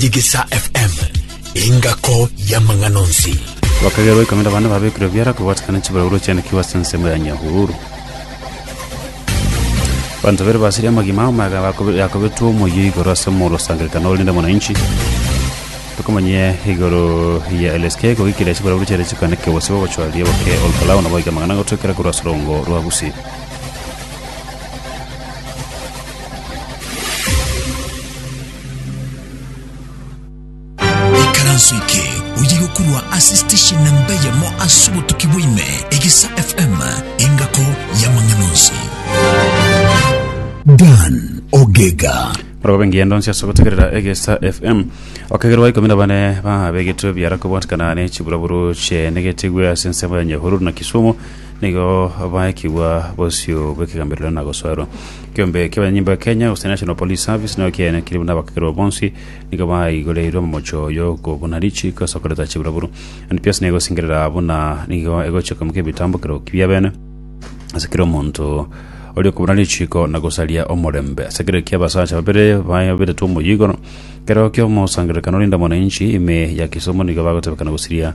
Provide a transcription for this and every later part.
Digisa FM, engako y'amang'ana onsi. Bakagerwa ikomi na bane babekirwe biara kobwatikana chibaragurwa chiane kiwa ase ensemo ya Nyahururu. Banto babere basiria amagima ao maega bakobe- yakobetwa omoyio igoro ase omoro osangerekana orinde mwananchi tokomanyia igoro ya LSK kogikiria chibaragurwa chiare chikane kegose bogochwaria boke Olkalao nabo oike amang'ana gotwekera korwa ase orongo rwa Gusii. Ikaranso eke oye gokorwa ase station namba eyemo ase obotuki bwaime egesa fm engako y'amang'ana onsi dan ogega orobe ngendo nsi ase gotegerera egesa fm okegerwa ikomi na bane babegetwe biara kobwatikana ne chiburaburu chiaenegetigwe ase ensemo ya nyahururu na kisumu Nigo baekigwa bosio bw'ekegamberero na gosoerwa. Ekeombe ki'abanyanyimbo ya Kenya, gose National Police Service, nigo kiaenekire buna abakekerwa bonsi nigo baigoreirwe momocho y'okobuna richiiko ase okoreta chiburaburu. NPS nigo egosingerera buna nigo egochia koimokia ebitambokero bi'ebeene ase kera omonto oria okobuna richiiko na gosaria omorembe ase ekero ki'abasacha babere babetetwe omoyio igoro. Kero ki'omosangererekano rinde mwananchi ime ya Kisumu nigo bagotebekana gosiria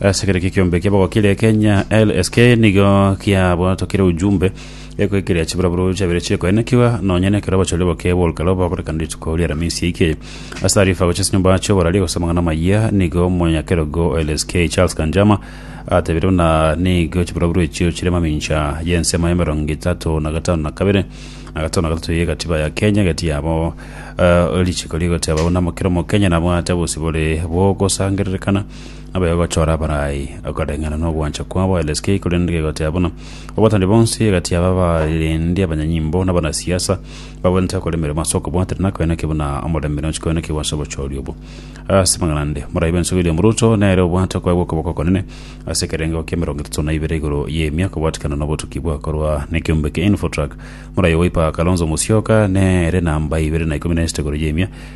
Ase kera ekiombe kia bogokira Kenya LSK nigo kiabwatokire ujumbe ekoikeria chiburaburo chiabere chiekoenekiwa nonya nekero abachori boke borukero bagorekana rituko ri'aramisi yaike. Ase taarifa gochia ase nyomba chi'oborari gose amang'ana amayia nigo omonyakerogo o LSK Charles Kanjama atebire buna nigo chiburaburo echio chire mamincha y'ensemo ya emerongo etato na gatano na kabere na gatano na gatato y'egatiba ya Kenya egati yabo uh, richiko rigoteba buna kera omokenya nabwate obosibore bwogosangererekana Nabo egochora abarai, ekoreng'ana nogwancha kwabo LSK, korende kegotea buna abatangi bonsi egati yabo abarendi, abanyanyimbo, na abanasiasa bagwenerete gokora emeremo ase okobwatera na koeneki buna omorembe nochi koenekiwa ase obochori obo. Ase amang'ana ande, Morai bwensi William Ruto nere obwate okoegwa okoboko okonene ase ekerengo kia emerongo etato na ibere igoro y'emia kobwatikana nobotuki bwakorwa nekeombe kia Infotrak. Morai o Wiper Kalonzo Musyoka nere namba ibere na ikomi na esete igoro y'emia.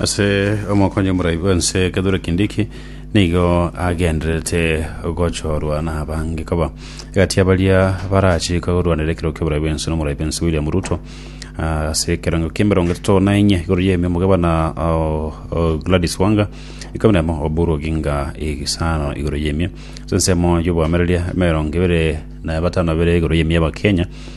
Ase omokonyi omorai bw'ense Kithure Kindiki nigo agendererete gochorwa n'abange koba egati y'abaria barachika korwanera ekero ki'oborai bw'ense n'omorai bw'ense William Ruto ah, ase ekerango k'emerongo etato na enye igoro y'emi omogabana oh, oh, Gladys Wanga ikomi nemo Oburu Oginga egesano igoro y'emi ase ensemo y'obwamenereria emerongo ebere na batano bere igoro y'emi y'Abakenya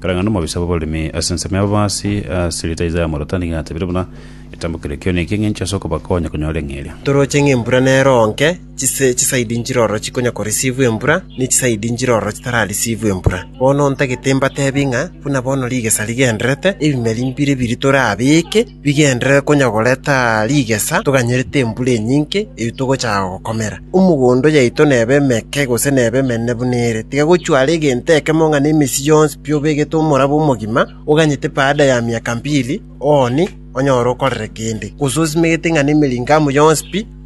Karang'ana omobisa bw'abaremi ase ensemo y'ababaasi ase rieta Isaya omorwotani gatebire buna, Eketambo keria kio neke ng'encho ase okobakonya konyora eng'eria. Toroche ng'a embura nero onke, chise chisaidi nchirororo chikonya koreceive embura, ne chisaidi nchirororo chitara receive embura. Bono ntagete mbateebie ng'a buna bono rigesa rigendererete, ebimeri mbire biri torabeeke? bigenderere konya goreta rigesa toganyerete embura enyinge eyio togochaka gokomera. Omogondo oyaito nebe emeke gose nebe emenene buna ere, tiga gochware egento ekemo ng'a nemesi yonsi pi obegete omorabo omogima, oganyete baada ya miaka mbili ooni onyore okorere kende, gose osimegete ng'a nemeringo amo yonsi pi,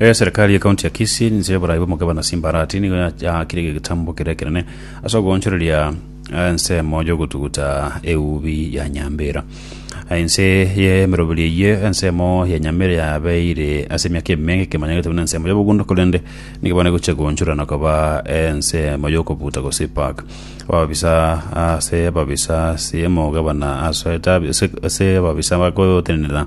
Eserikari ye kaunti ya Kisii ninse y'oborai bw'omogabane ase Mbarati nigo ya- yaakire egetambo kere ekenene ase ogoonchoreria eh, ensemo y'ogotuguta eubi ya Nyambera. Eh, Ense y'emeroberi eyio ensemo ya Nyambera yabeire ase emiaka emenge ekemanyeretwe buna ensemo y'obogundo korende nigo bono egochia goonchorana koba eh, ensemo y'okobuta gose park. Ababisa ase ababisa ase omogabane ase etabi- ase- ase ababisa bagotenenera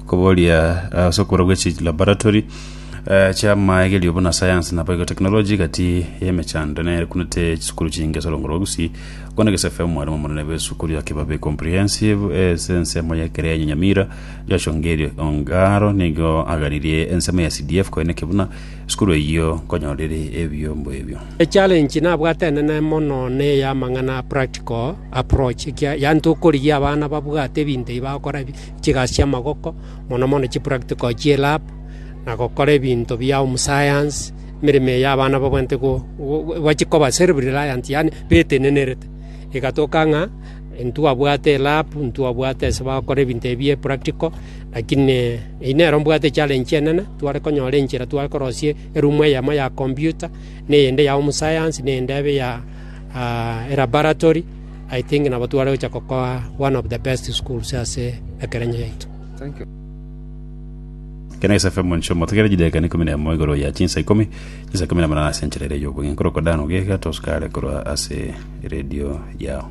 okoboria ase okorwa gwe chi laboratory eh, chia maegerio buna science na biotechnology gati yemechando nere kunete chisukuru chinge ase olongoro gusii kona gesefe omwarimu omonene bw'esukuru ya kibabe comprehensive eh, ase ensemo ya ekere ya nyamira joshua ngerio ongaro nigo agaririe ensemo ya cdf koeneke buna esukuru eyio nkonyorire ebiombo ebio Echallenge nabwatene ne mono neye amang'ana a practical approach ekia yaani tokorigia abana babwate ebinto ebi bagokora ebi chigasi chi'amagoko mono mono chipractical chie lab na gokora ebinto bia home science emeremo eyo abana babwenerete go go bachi koba self reliant yaani betenenerete egatoka ng'a ntwabwate elab ntwabwate ase bagokora ebinto ebi bie practical lakini eyi nero mbwate echallenge enene tware konyora enchera tware korosia erumu eyemo ya computer, na eyende ya home science, na eyende ebe ya ah, elaboratory. I think nabo tware gocha gokoa one of the best schools ase ekerenyo yaito. Kena Ase FM Moncho motegere chidakika na ikomi na emo igoro ya chinsa ikomi, chinsa ikomi na manana ase enchera ere y'obogenki, orokodano geka tosukare korwa ase eredio yao.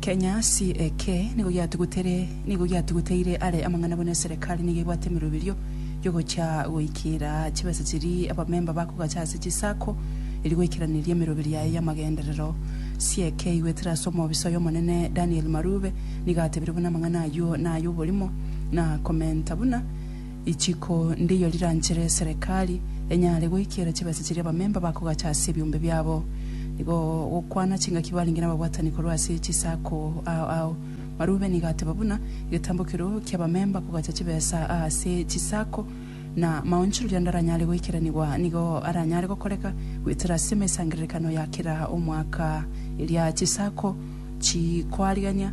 Kenyasi eke nigo giatugutere nigo giatuguteire are amang'ana buna eserekari nigo ebwate emeroberio y'ogocha goikera chibesa chiria abamemba bakogacha ase chisako erio goikeraneria emeroberio yaye y'amagenderero. Sieke aigwetire ase omobisa oy'Omonene Daniel Marube nigo atebire buna amang'ana ayio nay'oborimo na komenta buna Richiko ndeiyo riranchere eserekari enyare goikiera chibesa chiria abamemba bakogacha ase ebiombe biabo. Nigo gokwana chingaki barenge nababwatani korwa ase chisako ao ao. Marube nigo ateba buna egetambo keroo ki'abamemba kogacha chibesa aase chisako, na maonchoreria ande aranyare goikeranigwa nigo aranyare gokoreka goetera ase emesangererekano ya kera omwaka eria chisako chikoarigania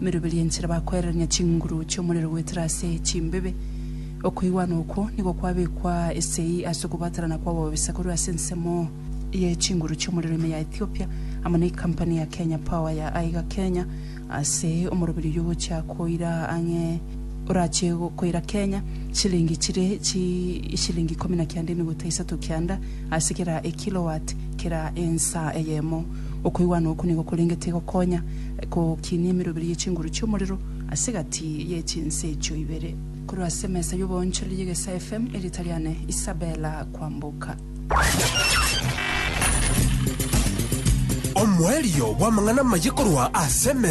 Emeroberio enchera bakwererania chinguru chi'omorero goetera ase chimbibe. Okoigwana okwo nigo kwabekwa esegi ase okobaterana kw'ababisa korwa ase ensemo ye chinguru chi'omorero ime ya Ethiopia amo ne ekampani ya Kenya Power ya aiga Kenya ase omoroberio oyio ogochia koira ang'e orache koira Kenya chilingi chire ishilingi ikomi na kianda emeguta isato kianda ase kera ekilowatt kera ensa eyemo. Okoigwana okwo nigo korengete gokonya Ekokinia emeroberi ye chinguru chi'omorero ase egati ye chinse echio ibere. Korwa ase emesa y'oboonchoreri y'egesae FM, erieta riane Isabella Kwamboka. Omoerio bw'amang'ana amaye korwa ase emesa.